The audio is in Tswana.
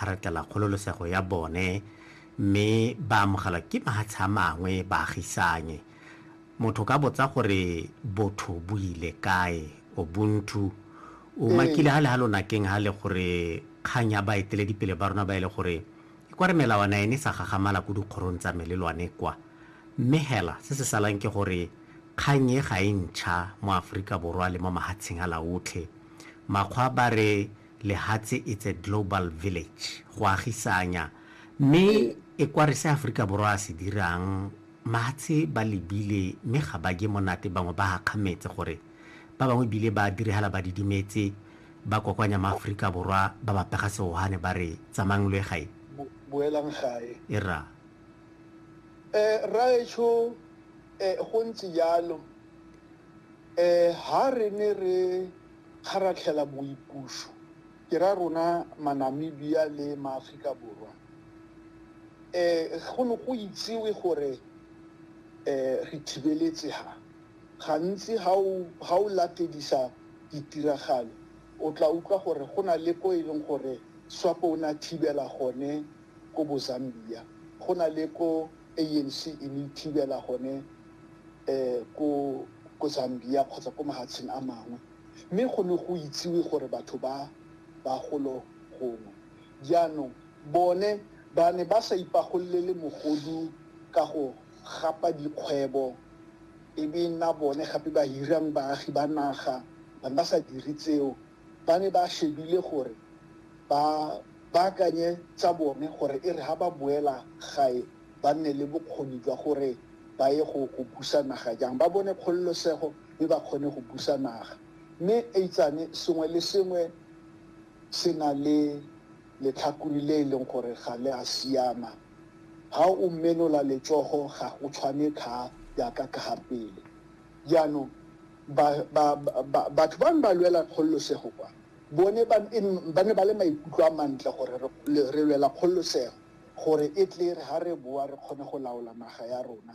a retela kgololosego ya bone mme ba amogelwa ke mahatshe a mangwe baagisanye. Motho ka botsa gore botho bo ile kae, Ubuntu, o makile ha le ha lonakeng ha le gore kgang ya baeteledipele ba rona ba e le gore e kwa re melawana ene sa gagamala ko dikgorong tsa melelwane kwa. Mme hela se se salang ke gore kgang e ga e ntšha mo Aforika Borwa le mo mahatsheng a laotlhe. Makgwa ba re Lehatshe it's a global village, go agisanya. Mme e kware se Aforika Borwa a se dirang, mahatshe ba lebile mme ga ba je monate bangwe ba gakgametse gore ba bangwe ebile ba dirigala ba didimetse, ba kokoanya maAforika Borwa ba ba pega seohane ba re tsamayang lo ye gae. Boelang gae. E ra. Eh, rraetsho, eh, go ntse jalo. Eh, ha re ne re. kgaratlhela boipuso, ke ra rona maNamibia le maAfrika Borwa, go ne go itsewe gore re thibeletse ha. Gantsi ha o latedisa ditiragalo, o tla utlwa gore go na le ko e leng gore Swapo o ne a thibela gone ko bo Zambia, go na le ko ANC e ne e thibela gone ko Zambia kgotsa ko mahatsheng a mangwe, mme go ne go itsiwe gore batho ba ba golo gongwe. Jaanong bone ba ne ba sa ipagolele mogodu ka go gapa dikgwebo e be nna bone gape ba hirang baagi ba naga, ba ne ba sa dire tseo. ba ne ba shebile gore ba baakanye tsa bone gore e re ha ba boela gae ba nne le bokgoni jwa gore ba ye go go busa naga jang ba bone kgololosego mme ba kgone go busa naga mme eitsane sengwe le sengwe se na le letlhakuri le e leng gore ga le a siama ha o mmenola letsogo ga go tshwane tlha yaka ka ga pele Jaanong, ba, ba, ba, batho ba ne ba lwela kgololosego kwa, bone ba, e, ba ne ba le maikutlo a mantle gore re, le, re lwela kgololosego, gore e tle e re ha re boa re kgone go laola naga ya rona.